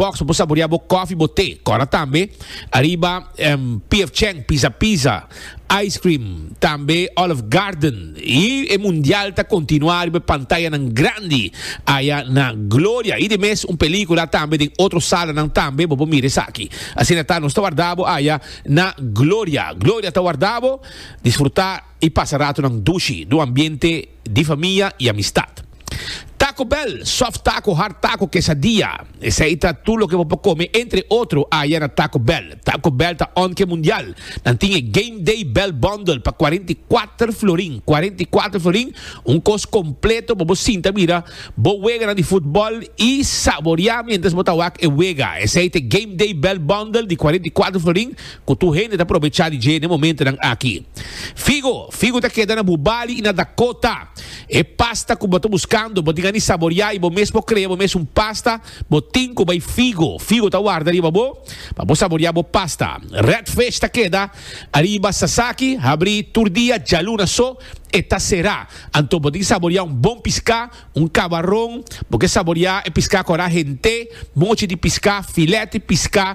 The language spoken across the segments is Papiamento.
Box bo saborea bo kofi bo te kora tambe ariba pf cheng pisa pisa ice cream tambe olive garden y e mundial ta continua ariba e pantayanan grandi aya na gloria y de mes un pelicula tambe den otro salanan tambe bo por mira esaki asina ta nos ta warda bo aya na gloria gloria ta warda bo disfruta i pasa ratonan dushi do ambiente di famia i amistad. Taco Bell, soft taco, hard taco, quesadilla, esei ta tur loke bo por come entre otro aya na Taco Bell. Taco Bell ta onke mundial. Nan tin e Game Day Bell Bundle pa cuarenta i cuater florin, cuarenta i cuater florin, un cos completo pa bo sinta mira bo weganan di futbol i saboria mientras bo ta wak e wega. Esei ta e Game Day Bell Bundle di cuarenta i cuater florin Ku tur hende ta probechá di dje na e momentunan aki. Figo, figu ta keda na bu bali i na Dakota. E pasta ku bo ta buskando, bo tin a ni saboriá i bo mes por krea bo mes un pasta, bo tin ku bai figo. Figo ta warda riba bo pa bo saboriá bo pasta. Red Fish ta keda ariba Sasaki, habrí tur dia, djaluna so e ta será. Anto bo tin ki saboriá un bon piská, un kabaron, bo ke saboriá e piská kora hent'é, mochi di piská, filèt di piská,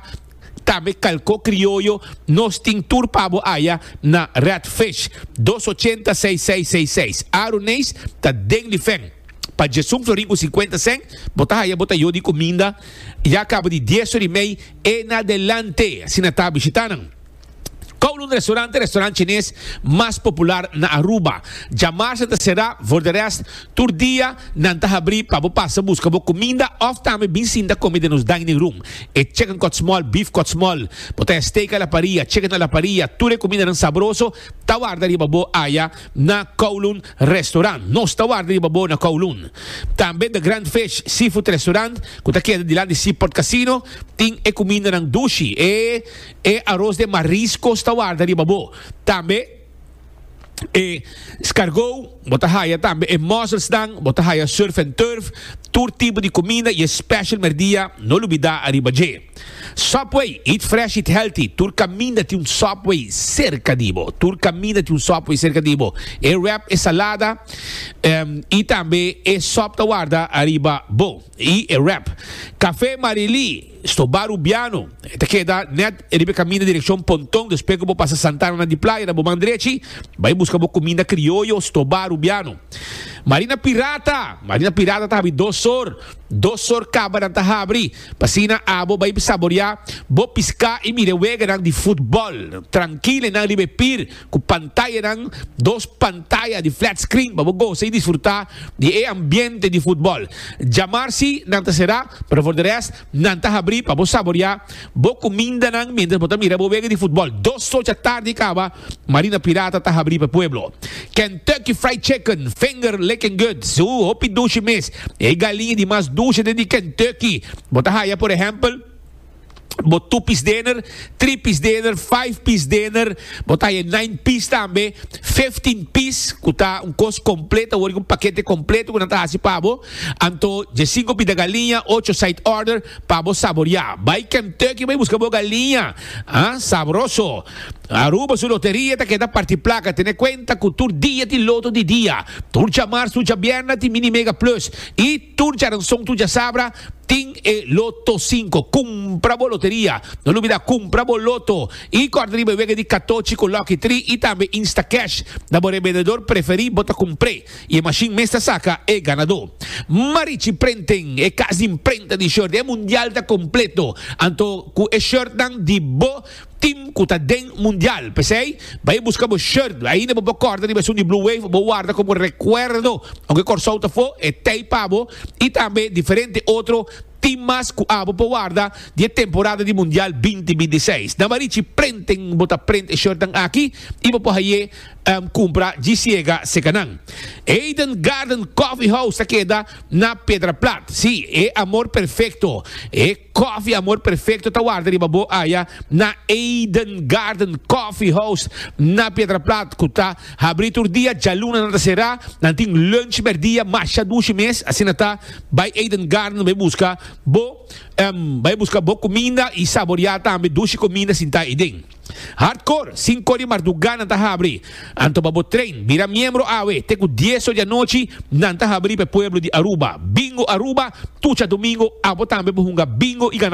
Tambe kalko krioyo nos tin tur pa bo aya na Red Fish dos ochenta seis seis seis seis Aro Neis ta den di fen pa Djesun Florin ku sinkuenta sèn bo ta haya bo ta yo di kuminda ya kaba di dies ora i mei e na delante asina ta bishita nan. Kowloon Restaurant e restaurant chines mas popular na Aruba. Djamarsa ta será, for de rest, tur dia nan ta habrí pa bo pasa buska bo kuminda òf tambe bin sinta kome den nos dining room. E chicken kòtsmòl, beef kòtsmòl, bo ta haya steak a la paria, chicken a la paria, tur e kumindanan sabroso ta warda riba bo aya na Kowloon Restaurant. Nos ta warda riba bo na Kowloon. Tambe The Grand Fish Seafood Restaurant, ku ta keda dilanti Seaport Casino, tin e kumindanan dushi, e. E aros den mariscos ta warda riba bo. Tambe e scargou bo ta haya tambe e musselsnan, bo ta haya surf and turf, tur tipo di cuminda y e special merdia no lubida ariba dje. Subway, eat fresh eat healthy, tur caminda tin un Subway cerca di bo, tur caminda tin un Subway cerca di bo. E wrap e salada em y tambe e sop ta warda ariba bo y e wrap. Café Marily. Stobá Rubiano, e ta keda nèt riba e kaminda direkshon Ponton, despues ku bo pasa Santana na di Playa, na bo man drechi, bai buska bo kuminda krioyo Stobá Rubiano. Marina Pirata, Marina Pirata ta habri dos sor, dos sor kabanan ta habri, pa asina abo bai saboriá bo piská i mira e weganan di futbòl, trankil enan riba e pir, ku pantayanan, dos pantaya di flat screen pa bo gosa i disfrutá di e ambiente di futbòl. Djamar si nan ta será, pero for di rest nan ta habrí pa bo saboriá bo kumindanan miéntras bo ta mira bo wega di futbòl. Dos sochi atardi kaba, Marina Pirata ta habrí pa e pueblo. Kentucky Fried Chicken, finger licking good, so hopi dushi mes. E galiña di mas dushi den di Kentucky bo ta haya, por ehèmpel, bo two piece dinner, three piece dinner, five piece dinner, bo ta nine piece tambe, fifteen piece, ku ta un kos kompleto, word un pakete kompleto ku nan ta hasi pa bo. Anto, je cinco pida galiña, ocho side order, pa bo saboreá. Bai Kentucky bai buska bo galiña, ha, sabroso. Aruba su loteria ta keda parti plaka, tene kuenta ku tur dia tin loto di dia, tur djamars, tur djabièrnè tin mini mega plus, i. Tur djaranson tur djasabra tin e loto sinko. Kumpra bo loteria. No lubida kumpra bo loto i kòrda riba e wega di katochi ku lòki tri i tambe Instacash. Na bo rebendedor preferí bo ta kumpr'é i e mashin mes ta saka e ganadó. Marichi Prenten, e kas di imprenta di short, e mundial ta kompleto. Anto ku e shortnan di bo Team cu ta den mundial. P'esey, bay busca bo shirt. Ainda bo por corta riba esun di Blue Wave, bo warda como recuerdo aunke Corsou ta fo, e tey pa bo y tambe diferente otro team mas cu abo por warda di e temporada di mundial binti binti seis. Na Marichi Printing bo ta print e shirtnan aki y bo por haye cumpra djisiega secanan. Eden Garden Coffee House ta keda na Pedraplat. Sí, e amor perfecto. E. Koffie Amor Perfecto ta warda riba bo aya na Eden Garden Coffee House na Piedraplat cu ta habri tur dia djaluna nan ta cera nan tin lunch merdia masha dushi mes asina ta bay Eden Garden bay busca bo bay busca bo cuminda y saboria tambe dushi cuminda sinta ayi den. Hardcore, Sinko di marduga nan ta habri. Anto pa bo train, bira miembro awe, te ku dieso di anochi nan ta habri pa e pueblo di Aruba. Bingo Aruba, tucha domingo, abo tambe bo hunga bingo i gana.